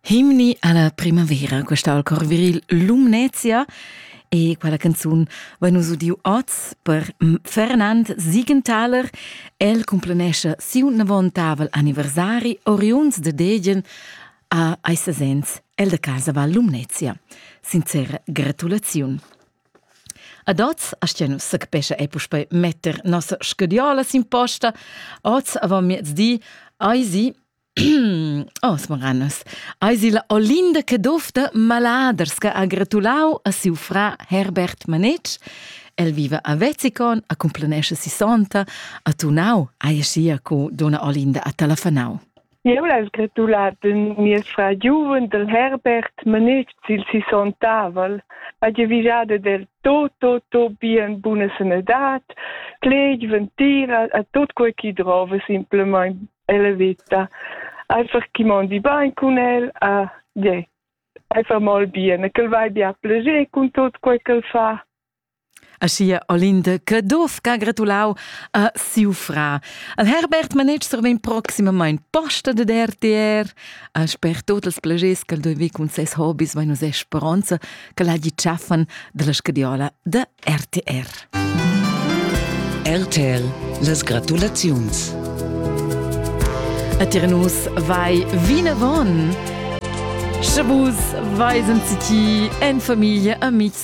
Himni alla primavera, questa al cor viril Lumnezia e quella canzun va nus udiu oz per Fernand Siegenthaler. El cumplenescha siu navontavel anniversari oriunds de Degen a Eisesens, el de casa va Lumnezia. Sincera gratulaziun. Ad oz astgia nus sechapescha ei puspei metter nossa scadiola sin posta. Oz avon miezdi ei si Oh, smoranus. Ei si la Olinda Cadofta Maladers che ha gratulau a siu fra Herbert Manetsch. El viva a Vezzicon, a cumplanesce sissonta, a Tunau, ai e sia co donna Olinda a Talafanau. Eu l'hais gratulà d'ün mieus frar giuven dal Herbert manich sül sisontavel, ha giavüschada del tot, tot, tot bien buna sanadad, cleg, ventira, a tot quai chi drova simplamaing e la vita. Einfach chi mondi bain cun el, a je, einfach mol bien, e ch'el vai be a plascher cun tot quai ch'el fa. a sia Olinde che dovca gratulau a siu fra. Al Herbert Manetschser vegn proximamain posta dad RTR, a sper tot els plegers ch'el dovei cun ses hobbies vain nus speronza ch'el hagi tschaffan dalla scadiola da RTR. RTL, las gratulaziuns. A Tirnus vai vinavon. Sche vus veisen ti en familie, amici